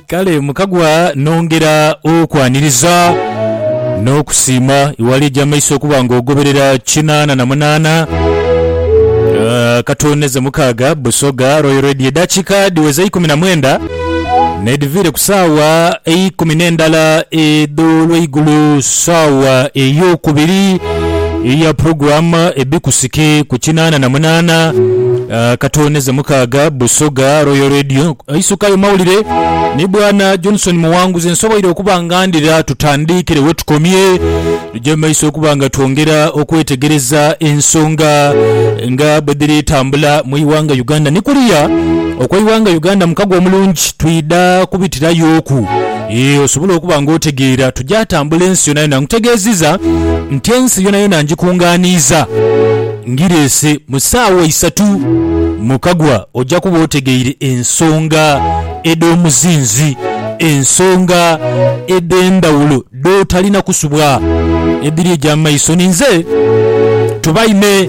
Kale mukagwa nongera okwaniriza n'okusiima iwali eja maiso okuba nga ogoberera kinaana na munaana ah, katooneze mukaaga Busoga Royal Radio. Edakika dhiweza ikumi na mwenda nedhiviire ku saawa eikumi n'endala edh'olweigulo saawa ey'okubiri. Iya program ebi kusike ku kinana na munana katone ze mukaga Busoga Royal Radio aisukayo mawulire ni bwana Johnson Muwanguzi nsoboire okuba nga ndira tutandikire wetukomye tuje mumaiso okuba nga twongera okwetegereza ensonga nga bwedhiri tambula mu iwanga Uganda ni kuliya okwa iwanga Uganda mukago omulungi twidha kubitirayo ku Yee, osobole okuba ng'otegeera. Tugya tambula ensi yonayona. Nkutegeezizza nti ensi yonayona ngikungaaniiza ngireese. Mu ssaawa isatu mu kagwa ojja kuba otegeire ensonga edh'omuzinzi, ensonga edh'endhawulo dh'otalina kusubwa edhiri egy'amaiso ni nze. Tubaime.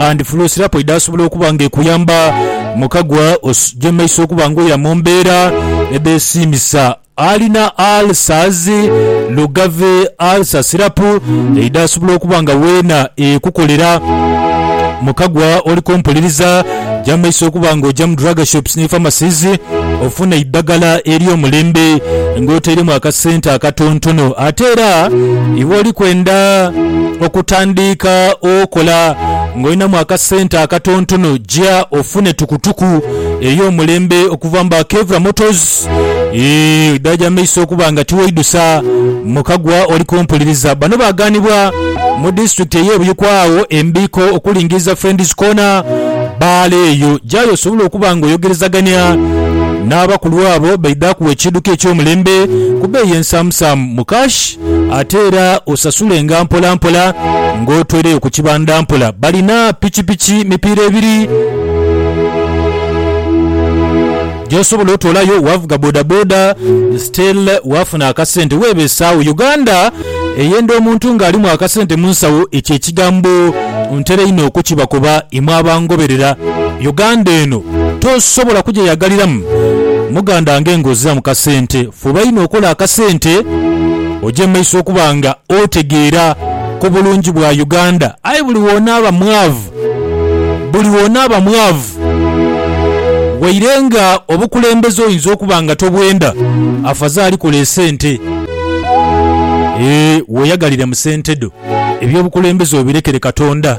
and flow syrup edhasobola okuba nga ekuyamba mu kagwa osugye mu maiso okuba nga oira mu mbeera edhesiimisa. Alina ulcers, Lugave ulcer syrup edhasobola okuba nga weena ekukolera mu kagwa oli kompuliriza. Ja mu maiso okuba nga oja mu drug shops ni pharmacies ofune eidagala ery'omulembe nga otairemu akasente akatontono. Ate era iwe oli kwenda okutandiika okola nga olinamu akasente akatontono, ja ofune tukutuku ey'omulembe okuva mu ba Kevra Motors. Eeh, oidagala ja mu maiso okuba nga tiweidhusa mu kagwa oli kumpuliriza. Bano baaganibwa. Mu disitulikiti ey'e Buikwe agho embiiko okulingiriza Friends Corner, bbaala eyo gy'ayo osobole okuba ng'oyogerezagania n'abakulu abo baidhe akuwe ekiidhuka eky'omulembe ku bbeeyi ensaamusaamu mu cash ate era osasulenga mpolampola ng'otweireyo ku kibanda mpola. Balina pikipiki mipiira ebiri. gyosobola otolayo wavuga boda boda still wafuna akasente webesawo Uganda eyenda omuntu nga alimu akasente munsawo ekyo ekigambo ntera inho okukiba kuba imwe abangoberera Uganda eno tosobola kujeyagaliramu muganda nge nga oziramu kasente Fuba inho okole akasente oje maiso okuba nga otegeera ku bulungi bwa Uganda. Aye buli w'onaaba mwaavu, buli w'onaaba mwaavu. Waire nga obukulembeze oyinza okuba nga tobwenda, afazaali kola esente. Eeh weeyagalire mu sente dho. Eby'obukulembeze obirekere Katonda.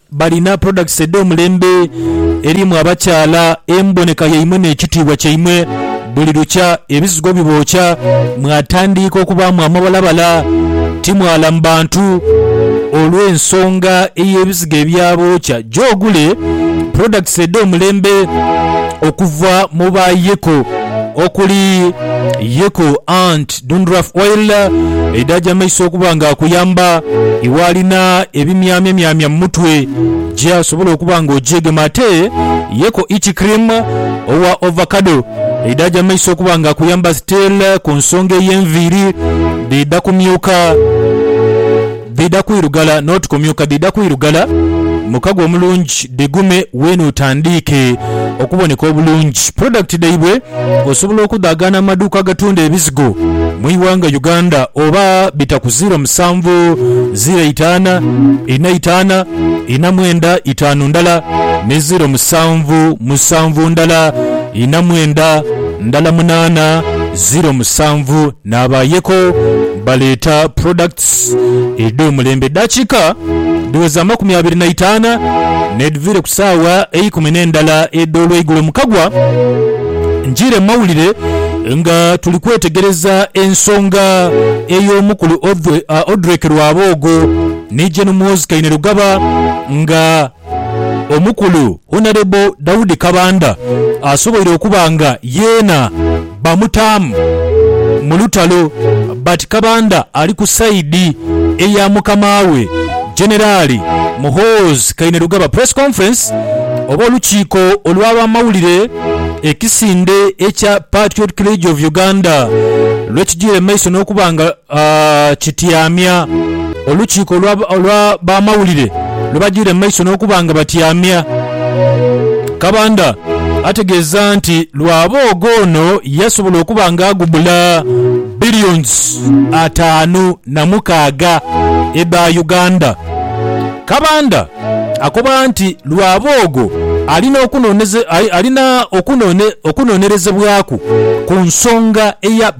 Balina products edh'omulembe erimu abakyala, emboneka yaimwe n'ekitiibwa kyaimwe. Buli lukya ebizigo bibookya mwatandiika okubaamu amabalabala. Timwalamu bantu olw'ensonga ey'ebizigo ebyabookya. Ja ogule products edh'omulembe okuva mu ba Yeko okuli Yeko Ant, Dundruff Oil eidha gyamaiso okuba nga akuyamba iwe alina ebimyamyamyamya mu mutwe gye asobola okuba nga ogyegema ate ye ko Itchy Cream owa Ovacado eidha gyamaiso okuba nga akuyamba still ku nsonga ey'enviiri dhidha kumyuka. Dhidha kwirugala n'otukomyoka dhidha kwirugala mukago omulungi dhigume weene otandiike okuboneka obulungi. Product dhaibwe osobola okudhaagaana mu maduuka agatunda ebizigo mu ighanga Uganda oba bita ku ziro musanvu ziro itaana ina itaana ina mwenda itaanu ndala ni ziro musanvu musanvu ndala ina mwenda ndala munaana ziro musanvu. Naabaayeko baleeta products edh'omulembe dakiika dhiweza amakumi abiri na itaana n'edhviire ku saawa eikumi n'endala edh'olweigulo mu kagwa njiire mu mawulire nga tuli kwetegereza ensonga ey'omukulu Odrek Rwaboogo ni Gen Muhoozi Kainerugaba nga Omukulu Honourable Daudi Kabanda asoboire okuba nga yeena bamutaamu mu lutalo but Kabanda ali ku side eya mukama we Generali Muhoozi Kainerugaba Press Conference oba olukiiko olwa bamawulire ekisinde ekya Patriotic League of Uganda lwekigyiire mu maiso nokuba nga kityamya olukiiko olwa bamawulire lwe bajiire mu maiso n'okuba nga batyamya. Kabanda ategeeza nti lwa booga ono yasobola okuba nga agubula Billions ataanu na mukaaga edha Uganda. Kabanda akoba nti lwa boogo alina okunonerezebwaku ku nsonga eya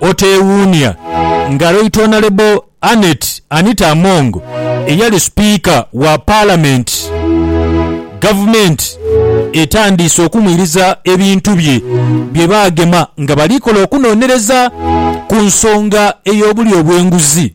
Oteewuunia nga Right Honourable Annet Anita Among eyali Sipiika wa Palamenti, Gavumenti etandiise okumwiriza ebintu bye bye baagema nga bali kola okunonereza ku nsonga ey'obulyo bw'enguzi.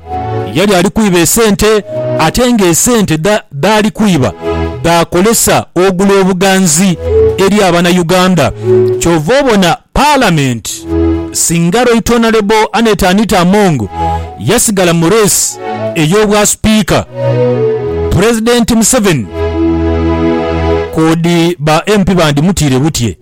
Yali ali kwiba esente ate ng'esente dhaali kwiba dhaakozesa ogula obuganzi eri abana Uganda. Kyova obona Palamenti singa Right Honourable Annet Anita Among yasigala mu reesi ey'obwa Sipiika, Pulezidenti Museveni kwoodi ba MP bandimutiire butye.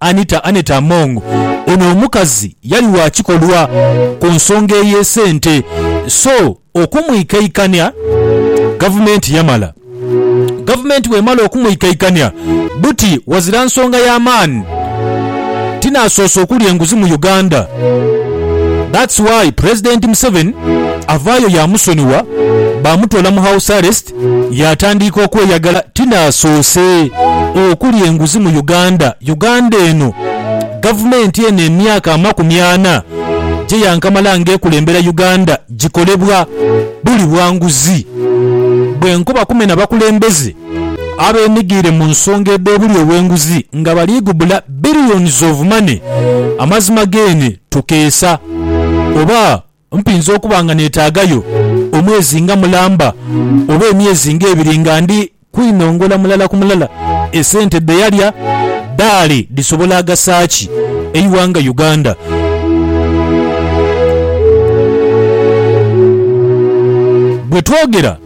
Anita, Annette Among, Ono omukazi yali wa kikolwa ku nsonga ey'esente so okumwikaikania Gavumenti yamala. Gavumenti bw'emala okumwikaikania buti ghazira nsonga ya maani tinaasoose okulya enguzi mu Uganda. That's why Pulezidenti Museveni avaayo yaamusonigha baamutoola mu House Arrest Yaatandiika okweyagala ti n'asoose okulya enguzi mu Uganda. Uganda eno, gavumenti eno emyaka amakumi ana gye yankamala ng'ekulembera Uganda gikolebwa buli bwa nguzi. Bwenkoba kumena bakulembeze abenigire mu nsonga edh'obulya obw'enguzi nga baliigubula billions of money, amazima geene tukeesa oba? Mpinza okuba nga neetaagayo omwezi nga mulamba oba emyezi ng'ebiri nga ndi kwinongola mulala ku mulala esente dhe yalya, dhaali dhisobola agasa ki eighanga Uganda? Bwe twogera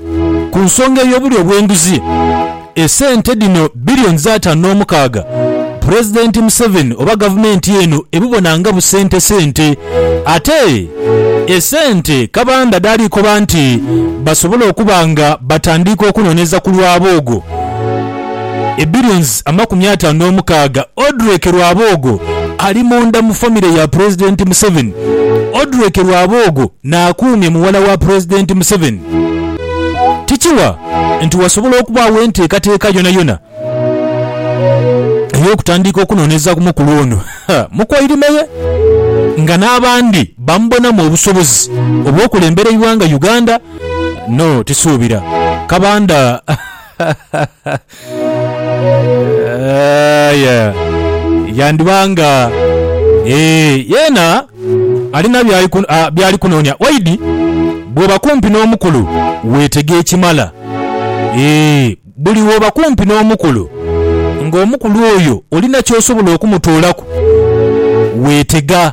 ku nsonga ey'obulyo obw'enguzi, Esente dhino billions ataanu n'omukaaga Pulezidenti Museveni oba gavumenti eno ebubona nga busentesente. Ate esente Kabanda dhaali koba nti basobole okuba nga batandiika okunooneza ku Rwaboogo e billions amakumi ataanu n'omukaaga. Odrek Rwaboogo ali munda mu famire ya Pulezidenti Museveni. Odrek Rwaboogo n'akuumye muwala wa Pulezidenti Museveni. Tikiwa. nti wasobola okubaagho enteekateeka yonayona ey'okutandiika okunoonyereza ku mukulu ono mu Koilime ye nga n'abandi bamubonamu obusobozi obw'okulembera eighanga Uganda no Tisuubira Kabanda. Aye yandiba nga ee, yeena alina by'ali kunoonia. Waidi bw'oba kumpi n'omukulu weetega ekimala. Ee, buli w'oba kumpi n'omukulu ng'omukulu oyo olina ky'osobola okumutoolaku, weetega.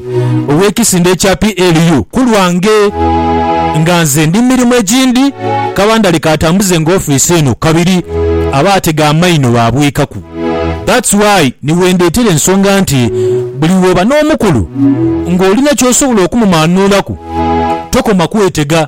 ow'ekisinde ekya PLU ku lwange nga nze ndi mu mirimu egindi, kaba ndali kaatambuze nga ofiisi eno kabiri abaatega amaino baabwikaku. That's why ni wendheetera ensonga nti buli wooba n'omukulu ng'olina ky'osobola okumumaanuulaku tokoma kwetega.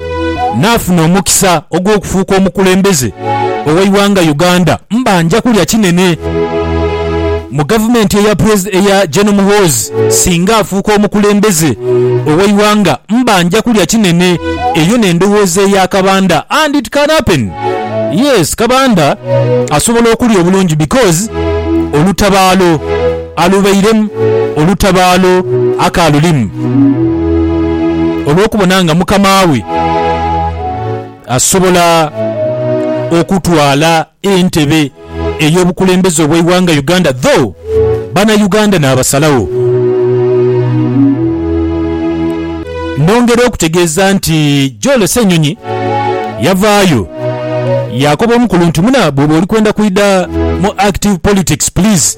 Naafuna omukisa ogw'okufuuka omukulembeze ow'eighanga Uganda. Mba nja kulya kinene mu gavumenti eya eya Gen Muhoozi. Singa afuuka omukulembeze ow'eighanga, mba nja kulya kinene. Eyo n'endowooza eya Kabanda and it can happen. Yes, Kabanda asobola okulya obulungi because olutabaalo. Alubairemu olutabaalo akaalulimu, olw'okubona nga mukama we asobola okutwala entebe ey'obukulembeze obw'eighanga Uganda though bana Uganda naabasalagho. Nongera okutegeeza nti Joel Ssenyonyi yavaayo yaakoba omukulu nti, Muna bwoba oli kwenda kwidha mu active politics please,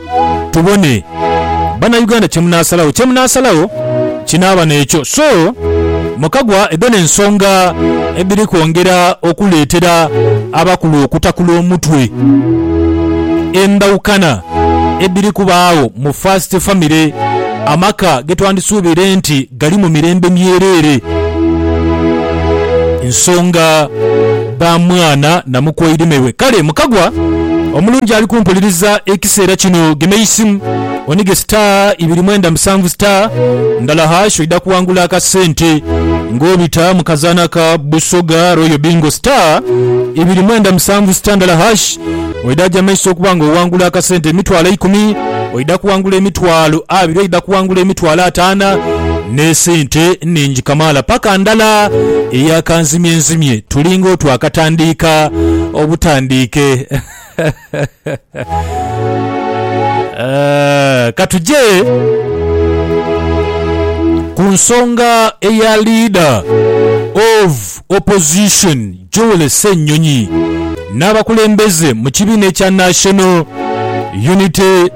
Tubone Banauganda kyemunasalagho. Kyemunasalagho kinaaba n'ekyo. So mukagwa edho n'ensonga edhiri kwongera okuleetera abakulu okutakula omutwe, endhaukana edhiri kubaagho mu first family, amaka getwandisuubire nti, gali mu mirembe myereere. Nsonga ba mwana na mukwairime we. Kale mukagwa omulungi ali kumpuliriza ekiseera kino gema eisimu onige star ibiri mwenda musanvu star ndala hash oidha kuwangula akasente nga obita mu kazaana ka Busoga Royal Bingo star ibiri mwenda musanvu star ndala hash. Oidha gya maiso okuba nga owangula akasente emitwalo eikumi, oidha kuwangula emitwalo abiri, oidha kuwangula emitwalo ataana n'esente nhingi kamaala. Paka ndala eya kanzimyenzimye tulinga oti akatandiika obutandiike. Eehh, ka tuje ku nsonga eya Leader of Opposition Joel Ssenyonyi n'abakulembeze mu kibiina ekya National Unity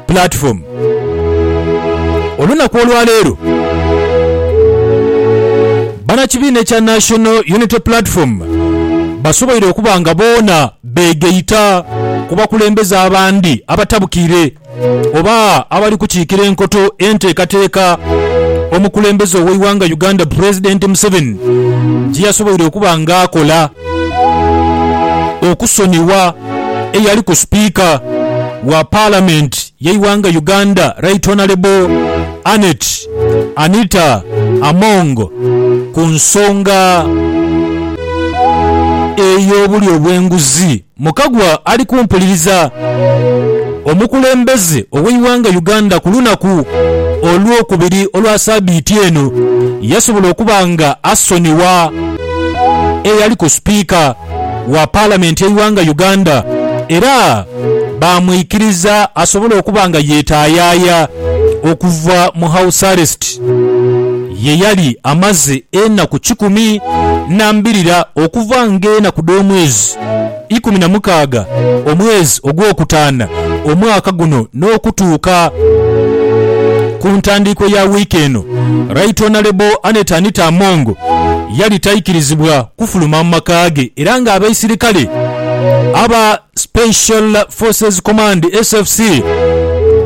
Platform olunaku olwaleero Banakibiina ekya National Unity Platform basoboire okuba nga boona beegaita ku bakulembeze abandi abatabukiire oba abali kukiikira enkoto enteekateeka omukulembeze ow'eighanga Uganda Pulezidenti Museveni gye yasoboire okuba nga akola okusonigha eyaliku Sipiika wa Palamenti y'eighanga Uganda Right Honalebo Annet Anita Among ku nsonga ey'obulyo bw'enguzi. Mukagwa ali kumpuliriza. Omukulembeze ow'eighanga Uganda ku lunaku olwokubiri olwa sabiiti eno yasobola okuba nga asonigha eyaliku sipiika wa palamenti y'eighanga Uganda era baamwikiriza asobole okuba nga yetaayaya okuva mu house arrest. Ye yali amaze enaku kikumi na mbirira okuva ng'enaku dh'omwezi ikumi na mukaaga, omwezi ogwokutaana, omwaka guno, n'okutuuka ku ntandiikwa ya wiiki eno, Right Honourable Annet Anita Among yali taikirizibwa kufuluma mu maka ge era ng'abaisirikale aba Special Forces Command, SFC,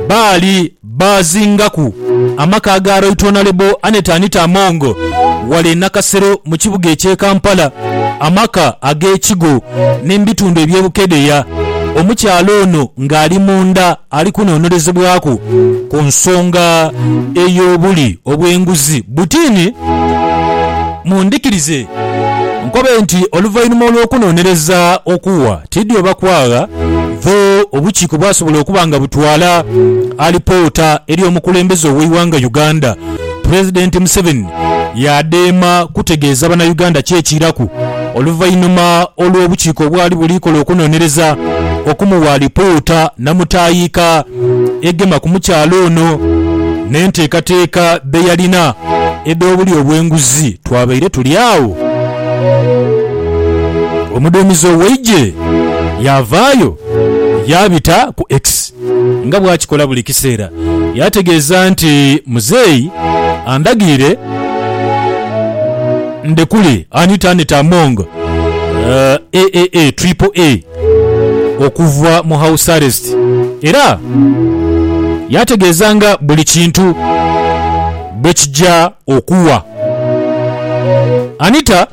baali baazingaku amaka ga Right Honourable Annet Anita Among ghale e Nakasero mu kibuga eky'e Kampala, amaka ag'e Kigo ni mu bitundu eby'e Bukedea, omukyala ono ng'ali munda. Ali kunonolezebwaku ku nsonga ey'obuli obw'enguzi butini. Mundhikirize nkobe nti oluvainhuma olw'okunonereza okuwa tidhi oba kwagha dho, obukiiko bwasobola okuba nga butwala alipoota eri omukulembeze ow'eighanga Uganda, Pulezidenti Museveni yaadema kutegeeza Bannayuganda ki ekiiraku oluvainhuma olw'obukiiko obwali buli kola okunonereza okumuwa alipoota namutaayiika egema ku mukyala ono n'enteekateeka dhe yalina edh'obulyo obw'enguzi. Twabaire tuli agho. Omuduumizi ow'eigye yaavaayo yaabita ku X. nga bw'akikola buli kiseera. Yategeeza nti, Muzeeyi andhagiire ndhekule Anita Annet Among, aka Triple A, okuva mu house arrest era yategeeza nga buli kintu bwe kija okuwa Anita.